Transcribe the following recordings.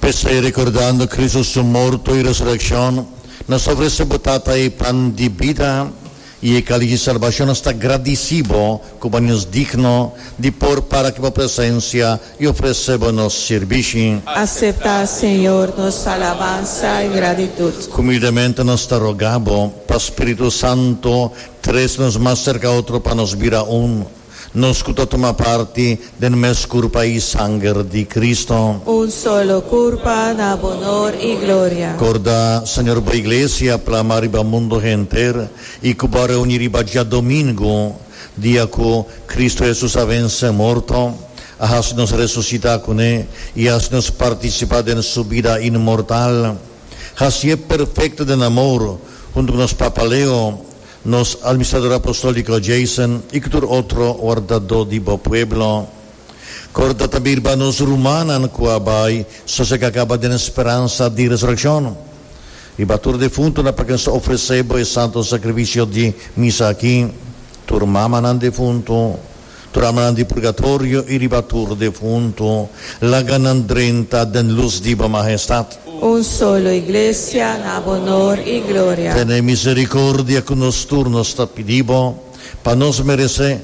P'esei, rekordando Kristu su morto i resurekshon, nos ta ofresé bo Tata e pan di bida i e kálix di salbashon. Nos ta gradisí bo ku bo haña nos digno di por para aki bo presensia i ofresé bo nos sirbishi. Aseptá, Señor, nos alabansa i gratitut. Humildemente nos ta rogá bo pa spiritu santu trese nos mas serka otro pa nos bira un. Nos cu ta tuma parti den mes curpa y sanger di Cristo. Un solo curpa na bonor y gloria. Corda, Señor bo Iglesia plama riba mundo henter y cu bo a reuni riba djadomingo, dia cu Cristo Jesus a vence morto, a haci nos resucita cu ne y haci nos participa den su bida inmortal. Haci'e perfecto den amor, hunto cu nos Papa Leo, Nos Almistrador Apostolico Jason y cu tur otro wardado di bo pueblo. Corda ta birba nos rumannan cu a bay sosega caba den speransa di resurreccion. Riba tur defuntonan pa quien sa ofrece bo e santo sacrificio di misa aki, tur mamanan defunto, Tranan di purgatorio i riba tur defuntu, laga nan drenta den lus di bo Mahestat. Un solo Iglesia na honor i gloria. Tene misericordia cu nos tur, nos ta pidi bo, pa nos merece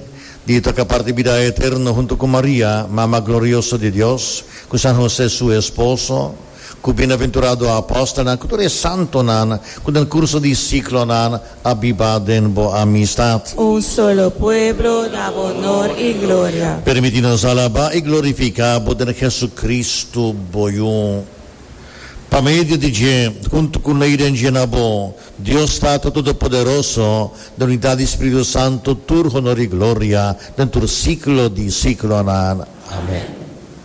di ta capar di bida eterno hunto cu Maria, Mama glorioso di Dios, cu San Jose su esposo, Ku bienaventurado apostelnan ku tur e santonan ku den kurso di siklonan a biba den bo amistat. Un solo pueblo na bo onor i gloria. Permití nos alabá i glorifiká bo den Hesukristu, bo Yu. Pa medio di dje, huntu ku lei den dje na bo, Dios Tata Todopoderoso, den unidat di Spiritu Santu, tur honor i gloria den tur siklo di siklonan. Amèn.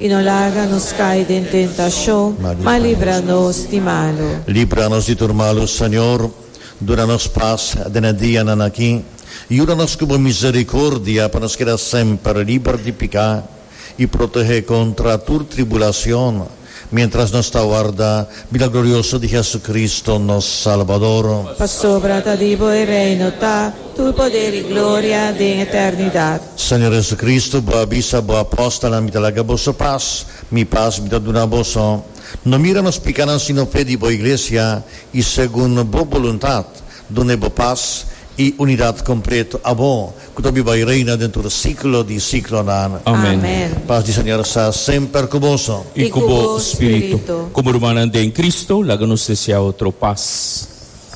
I no laga nos kai den tentashon, ma libra nos di malu. Libra nos di tur malu, Señor. Duna nos pas den e dianan aki. Yuda nos ku bo misericordia pa nos keda semper liber di piká i protehe kontra tur tribulacion, mientras nos ta warda bida glorioso di Jesucristo, nos Salvador. Pasobra ta di bo e reino ta tur poder i gloria den eternidad. Señor Jesucristo, Bo a bisa Bo apóstolnan, Mi ta laga boso pas, Mi pas Mi ta duna boso. No mira nos pikánan sino fe di Bo Iglesia, i segun Bo boluntat, duna e Bo pas i unidat kompleto. A Bo, ku ta biba i reina den tur siklo di siklonan. Amén. Pas di Señor sa semper ku boso. I ku bo spiritu. Komo rumannan den Cristo, laga nos deseá otro pas.